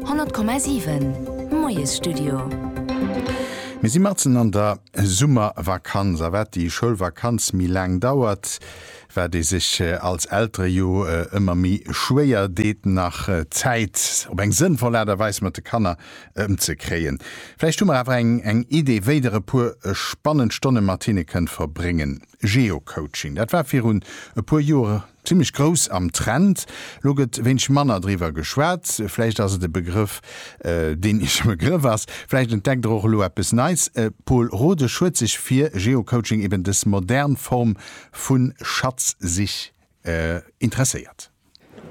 100,7 Moiesstudio. Mir si matzen an der Summervakanz a wat déi Schoulvakanz méi laang dauert, wat ee sech als Eltere jo ëmmer méi schwéier deet nach Zäit op eng sënnvoll Aart a Weis mat de Kanner ëmzekréien. Vläicht hu mer awer eng Idee wéi der e puer spannend Stonne mat hinne kënnt verbréngen. Geocoaching, dat war virun e puer Joer Zimmlech grouss am Trend. Lo gëtt wéineg manner driwwer geschwat. Vläicht ass et e Begrëff, deen Iech e Begrëff ass. Vläicht entdeckt Der och elo eppes Neis. D'Pol Rodesch huet sech fir Geocoaching, eben dës modern Form vu Schatzsich, interesséiert.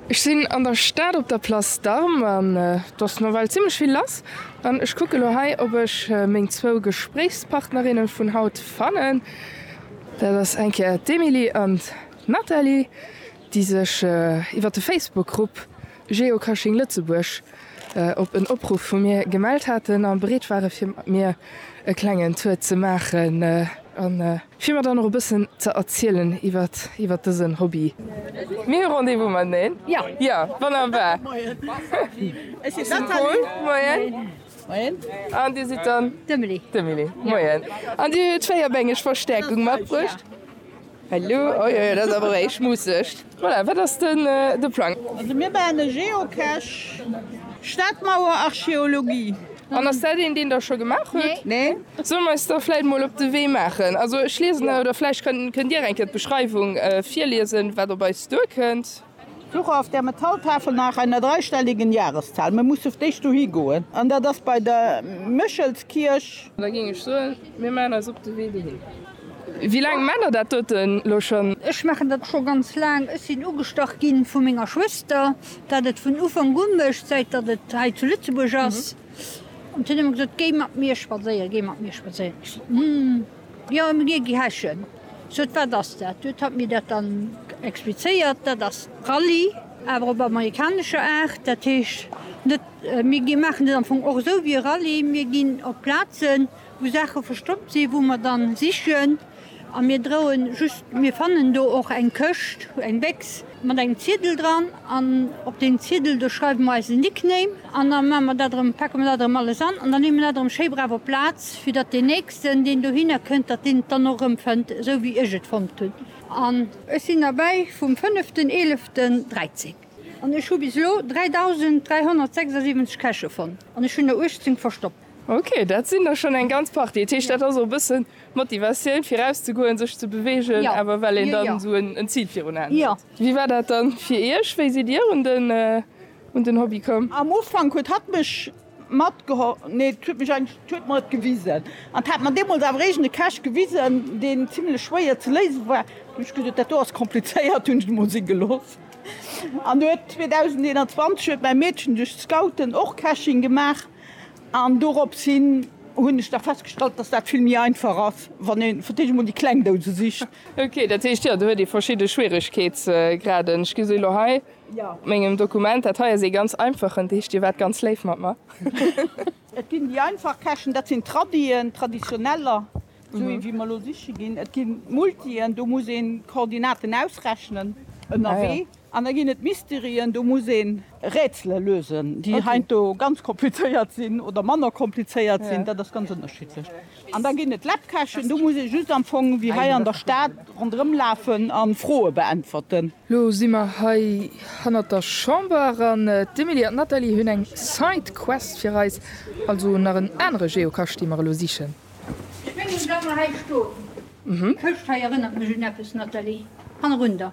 Ech sinn an der Stad op der Place d'Armes an et ass nawell zimmlech vill lass. An ech kucke lo hei, ob ech meng zwou Gespréichspartnerinne vun haut fannen. Dat ass eng Kéier d'Emilie an D'Nathalie, déi sech iwwer de Facebook-Grupp Geocaching Lëtzebuerg op en Opruff vu mir gemellt haten a bereet ware fir mat mir e klengen Tour ze maachen a fir mer dann och e bëssen ze erzielen iwwer dësen Hobby. Mir hu Rendez-vous mateneen. Jo, wonnerbar. Ech sinn d'Nathalie. Moien. Moien. An Dir sidd dann? D'Emily. D'Emily. Moien. An Dir hutt 4 Bänk, ech verstäerkung, matbruecht? Hallo, oje, dat ass awer réi schmusseg. Voilà, wat ass dann de Plang? Also mir bauen e Geocache, Stadmauer Archeologie. An ass dat een, deen Der scho gemaach huet? Nee. Solle mer eis da vläit mol op de Wee maachen? Also ech liesen, oder vläicht kënnt Dir eng Kéier d'Beschreiwung virliesen, wat op eis duerkënnt. Suche auf der Metalltafel nach einer dreistelligen Jahreszahl. Mir musse d'éischt dohi goen, an dat ass bei der Méchelskierch. Da géing ech soen, mir maachen eis op de Wee dohin. Wéi laang maacht Der dat dote lo schonn? Ech maachen dat scho ganz laang. Ech sinn ugestach gi vu menger Schwëster, dat et vun Ufank u mécht, säit datt et hei zu Lëtzebuerg ass. An si hunn ëmmer gesot, Géi mat mir spadséieren, géi mat mir spadséieren. Ech sot, Hm. Jo, ëm Rie gi heschen. Sot, wat ass dat? Huet hatt mir dat dann explizéiert, dat ass Rallye, awer op amerikanescher Aart. Dat heescht net, mir gi maachen dat am Fong och esou wéi e Rallye, mir ginn op Plazen, wou Saache verstoppt sinn, wou mer dann sichen a mir droen just, mir fannen do och eng Këscht, eng Bécks, mat engem Ziedel dran an op deen Ziedel do schreiwe mer eise Nickname an da maache mer dat erëm, packe mer dat erëm alles an an da leeë mer dat erëm schéi brav op d'Plaz, fir datt deen nächsten, deen dohinner kënnt, datt deen et dann och erëmfënnt, esou wéi ech et fonnt hunn. An ech sinn derbäi vum fënneften eeleften 13 an ech hu bis elo 3.376 Käsche fonnt an ech hunn der 18 verstoppt. Ok, dat sinn der schonn eng ganz Partie. Dat heescht, dat ass och e bëssen d'Motivatioun, fir erauszegoen, sech ze beweegen, awer well een dann esou en Zil virun Aen huet. Wéi war dat dann fir Iech? Wéi sidd Dir un den Hobby komm? Am Ufank huet hatt mech matgeholl, nee, et huet mech eigentlech, huet mer et gewisen. Hatt hat mer deemools awer eréischt e Cache gewisen, deen zimlech schwéier ze léisen war. Hunn ech gesot, dat do ass komplizéiert, hunn ech et emol si gelooss. An huet 2021 huet mäi Meedchen duerch d'Scouten och Caching gemaach. An doropshin hunn ech da festgestallt, dass dat vill méi einfach ass, wann ee fir d'éischt emol déi kleng Douse sicht. Ok, dat heescht, jo, do huet ee verschidde Schwieregkeetsgraden. Ech gesinn elo hei op mengem Dokument, dat hei ass ee ganz einfachen, heescht, Dir waart ganz léif mat mer. Et ginn déi einfach Käschen, dat sinn d'Tradien, d'Traditioneller, esou wéi mer elo siche ginn. Et gi Multien, do muss een d'Koordinaten ausrechnen ënnerwee. An da ginn et Mysterien, do muss een. Rätsele lösen, déi heiansdo ganz komplizéiert sinn oder manner komplizéiert sinn, dat ass ganz ënnerschiddlech. An da ginn et Lappkächen, do muss ee just am Fong wéi hei an der Stad ronderëm lafen a Froe beäntwerten. Lo si mer hei hannert der Chamber an d'Emily an d'Nathalie hunn eng Side Quest fir eis, also nach en anere Geocache, dee mer elo sichen. Ech mengen, wa mer hei stoen, d'Këscht hei erënnert mech un eppes, Nathalie, hannerun der.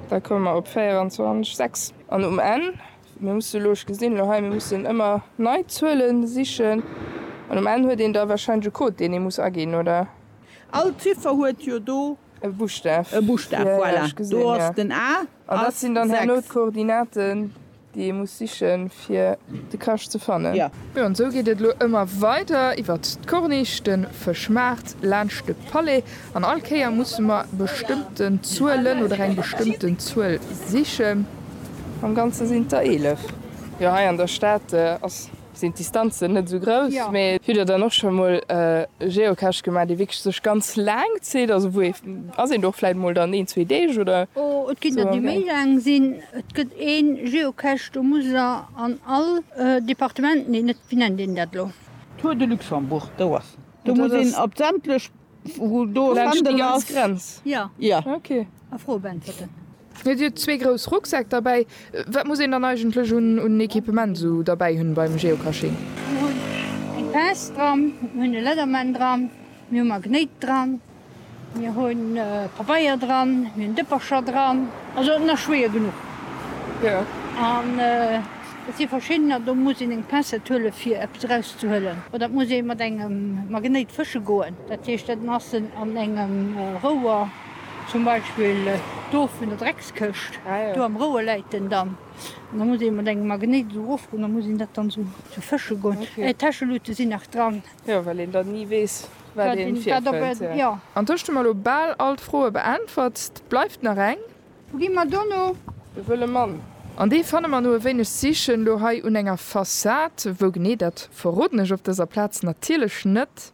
Da komme mer op 24, 6. An um Enn, mir musse elo, ech gesinn elo hei, mir mussen ëmmer nei Zuele sichen an um Enn huet een da warscheinlech e Code, deen ee muss aginn, oder? All Ziffer huet jo do. E Buschtaf. E Buschtaf, voilà. Do ass den A. An dat sinn dann herno d'Koordinaten. déi ee muss sichen fir de Cache ze fannen. Jo an sou geet et elo ëmmer weider iwwert d'Corniche, den Fëschmaart, laanscht de Palais an all Kéier musse mer bestëmmten Zuelen oder eng bestëmmten Zuel sichen. Am ganze sinn et der 11. Jo hei an der Stad ass Sinn d'Distanzen net esou grouss. Hutt der dann och scho mol e Geocache gemaach, dee wierklech sech ganz laang zitt? Also wou ee, ass een do och vläit mol dann een, zwee Deeg oder esou am Gaang? Oh, et ginn der, déi méi laang sinn. Et gëtt ee Geocache, do muss der an all Departement, nee, net, wéi nennt een dat elo? Tour de Luxembourg, do ass en. Do muss een op sämtlech Wou do laanscht déi ganz Grenz? Jo. Jo. Ok. A Froe beäntwerten. Dir hutt zwee grouss Rucksäck derbäi. Wat muss een dann eigentlech un Equipement esou derbäi hunn beim Geocaching? Mir hunn eng Pince dran, mir hunn e Leatherman dran, mir hu Magnéit dran, mir hu Pabeier dran, mir hunn Dëppercher dran, also et ass nach schwéier genuch. Jo. An. Et si verschiddener, do muss een eng Pincette huelen, fir eppes erauszehuelen. Oder et muss ee mat engem Magnéit fësche goen. Dat heescht, dat Nassen an engem Rouer, zum Beispill do vun der Dreckskëscht, do am Rouer läit den dann. An da muss ee mat engem Magnéit esou erofgoen, da muss een dat dann esou fësche goen. Täschelute sinn nach dran. Jo, well een dann ni weess, wat ee virfënnt. An du hues mer elo bal all d'Froe beäntwert. Bleift nach eng. Wou gi mer dono? De wëlle Mann. An dee fanne mer no e wéineg Sichen elo hei un enger Fassad. Wou genee, dat verroden ech op dëser Plaz natierlech net.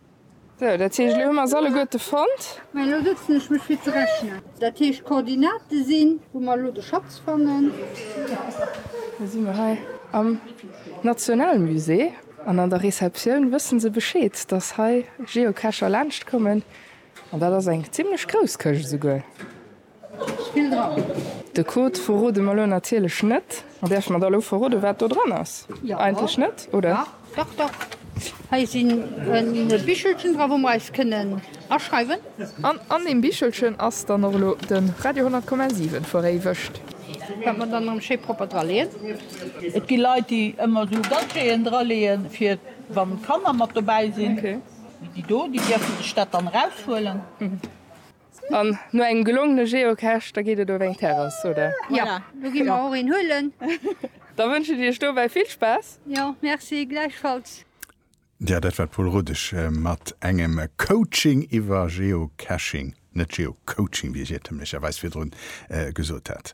Sou, dat heescht, elo hu mer se alleguerte fonnt. Mä elo sëtzen ech mech fir ze rechnen. Dat heescht, d'Koordinate sinn. Wou mer elo de Schatz fannen. Elo si mer hei am Nationalmusée an an der Receptioun wësse se Bescheed, dass hei Geocacher laanschtkommen. An dat ass eng zimlech grouss Këscht esouguer. Spill dran! De Code verrode mer elo natierlech net. An däerf mer da elo verrode wat do dran ass? Eigentlech net, oder? Dach, dach, dach! Hei sinn e Bichelchen dra wou mer eis kënnen aschreiwen. An an deem Bichelchen ass dann och elo de Radio 10,7 veréiwegt. Wat mer dann erëm schéi propper dra leeën. Et gi Leit déi ëmmer esou Gadgeten dra leeën fir wann d'Kanner mat dobäi sinn. Déi do, déi dierfen sech dat dann eraushuelen. An no engem gelongene Geocache, da geet et op eng Terrass, oder? Jo, do gi mer och een huelen. Da wënschen Iech dobäi vill Spaass! Jo, merci, gläichfalls. Ja, dat war d'Pol Rodesch mat engem Coaching iwwer Geocaching, net Geocoaching, wéi ech iertemlecherweis virdrun gesot hat.